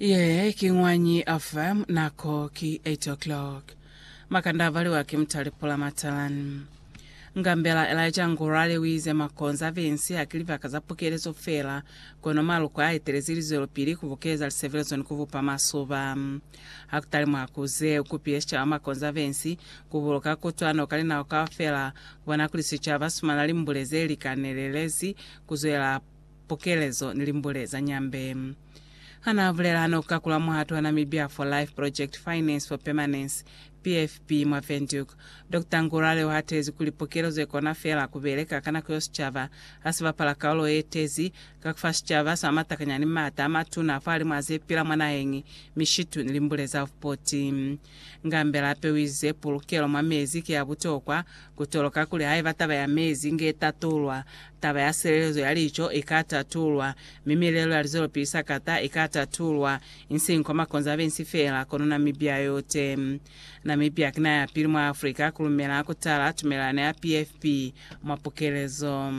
Ye ki Ñwanyi FM, nako ki 8 o'clock. Makanda abaliwa ki Mutali Pula Matalan. Ngambela Elijah Ngurali wize makonze a Vensi haki libaka za pukelezo fela, kono maluko a etelezi lizwelopili ku bukeza lisebelezo ni ku bupa masuba. Hakutali mwa ku ze, u kupile sicaba makonze a Vensi ku buluka kutwano ka linako kaufela, ku bona kuli sicaba si fumana limbule ze li kanelelezi ku zwela pukelezo ni limbule za Nyambe. Ha n'a bulela n'o ka kula muhato wa Namibia for Life Project Finance for Permanence, PFP, mwa Windhoek, Doctor Ngurare u hatezi kuli pukelezo i kona feela ku beleka ka nako yo sicaba ha si bapala kaulo ye tezi ka ku fa sicaba sa matakanyani m'ata a matuna fa limu a ze pila mwa naheñi, mishitu ni limbule za vupoti. Ngambela hape u ize pulukelo mwa mezi ki ya butokwa Ku toloka kuli haiba taba ya mezi inge itatulwa, taba ya silelezo ya lico ika tatulwa, mi milelo ya lizwelopili sakata ika tatulwa, insiñi kwa makonzo a bensi feela, kono Namibia yote. Namibia ki naha ya pili mwa Afrika ku lumela ku tala tumelelano ya PFP mwa pukelezo.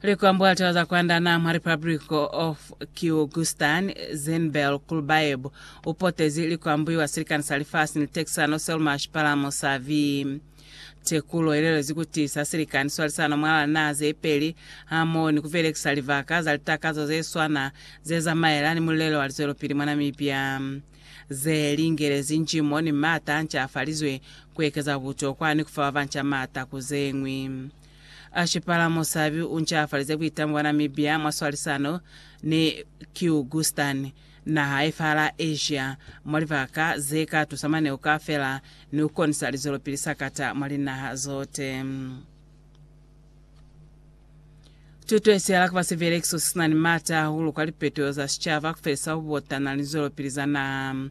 Likwambwa litawa za kwanda na mwa Republic of Kyrgyzstan, Zenbel Kulbayev, upotezi likwambuiwa silikani sa lifasi ni tekisano Selma Shipalamo sa vi. Tekulo ilelezi kuti sa silikani swalisano mwalala naha zepeli hamoho ni kubelekisa libaka za litakazo zeswana zezamaelana ni mulelo wa lizwelopili mwa Namibia. ze lingelezi njimo ni m'ata a nca afalizwe, ku ekeza butokwa ni ku fa ba banca m'ata ku ze ñwi. A Shipala Musabi u nca afalize buitamo bwa Namibia mwa swalisano ni Kyrgyzstan, naha ye fa la Asia, mwa libaka ze ka tusa maneo kaafela ni ku konisa lizwelopili sakata mwa linaha zote. Tuto ye sihala ku ba sivelekiso se si na ni m'ata hahulu kwa lipeto za sicaba, ku felisa ku botana ni zwelopili za naha.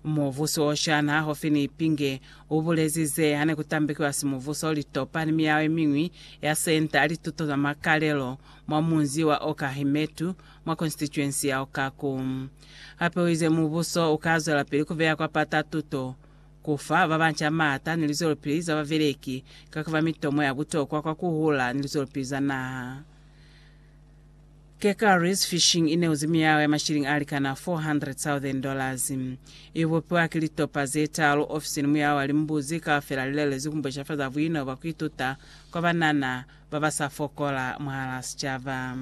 Mubusi wo shana ha ho fi ni Ipinge u bulezi ze ha ne ku tambekiwa simubuso, litopa ni miyao ye miñwi ya Senta ya Lituto za Makalelo mwa munzi wa Okahimetu mwa konsitituensi ya Okaku. Hape u ize mubuso u ka zwelapili ku beya kwa pata tuto ku fa ba banca maata ni lizwelopili za babeleki ka ku ba mitomo ya butokwa kwa ku hula ni lizwelopili za naha. Kekari's Fishing i neuzi miyaho ya mashilingi a likana $400,000. I bupiwa ki litopa ze taalu ofisini muyaho wa limbuzi kaufela li lelezwi ku mbosha fa za buino bwa ku ituta kwa banana ba ba sa fokola mwahalaa sicaba.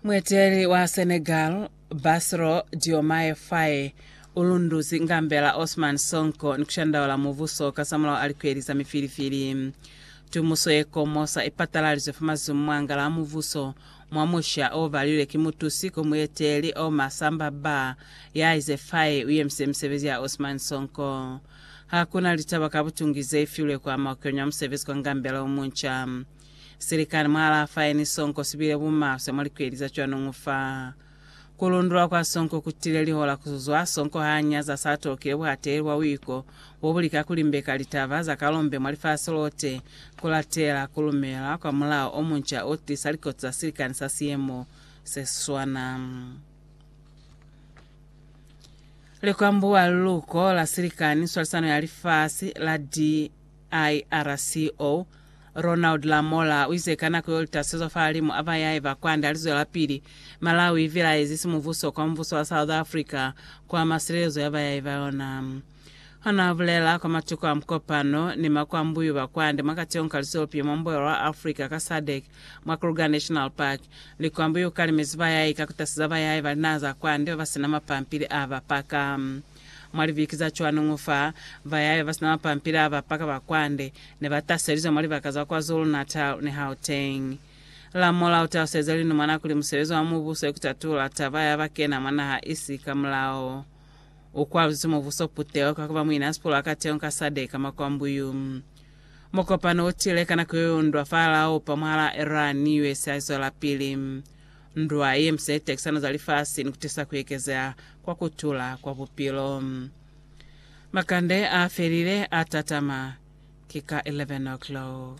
Mueteli wa Senegal Bassirou Diomaye Faye u lunduzi ngambela Ousmane Sonko ni ku shandaula mubuso kasamulaho a likweli za mifilifili. Tumuso ye komosa i patalalizwe fa mazumu mwa ngala a mubuso mwa musha o balilwe ki mutusi ko mueteli Omar Samba Ba ya ize Faye u yemise misebezi ya Ousmane Sonko. Ha ku na litaba ka butungi ze ifilwe ku ama ukenywa musebezi kwa ngambela o munca. Silikani mwa Rafaeni sonko sibile bumaswe mwa likweli za cwanuñu fa. Kulundulwa kwa sonko kutile lihola kuzwa sonko ha nyaza sa tolokile buhateli bwa buiko bobulika kulimbeka litaba za kalombe mwa lifasi lote, kulatela kulumela kwa mulao omunca otiisa likoti za silikani sa siyemo seswana. Likwambuwa, liluko la silikani, swalisano ya lifasi, la di. IRCO, Ronald Lamola uize ka nako yo litasezwa fahalimu a bayahi ba kwande alizwelapili, Malawi ivilaezi simubuso kwa mubuso wa South Africa kuama silelezo ya bayahi ba yona. Hona ubulela kwa matuku a mukopano ni makwambuyu ba kwande mwa kati yonka lizopi mwa Mboyo wa Africa ka SADC mwa Kruger National Park, likwambuyu ukalimezi bayahi ka kutaseza bayahi ba linaha za kwande babasina mapampili a bapaka. Mwa libiki za cwanuñu fa, bayaya ba si na mapampila ba paka ba kwande ne ba taselizwa mwa libaka za KwaZulu-Natal ni Gauteng. Lamola u taluseza linumwana kuli musebezi wa mubuso ki ku tatula taba ya ba kena mwa naha isi ka mulao. U kwaluzezi mubuso puteho ka ku ba muina sipulu a kateñi ka SADC ka makwambuyu. Mukopano u tile ka nako yo yundwa fa Laupa mwahal'a Iran ni USA zwelapili. Ndwa ye mise ye tekisano za lifasi ni kutisa kuekezeha kwa kutula kwa bupilo. Makande a felile a tatama. Ki ka 11 o'clock.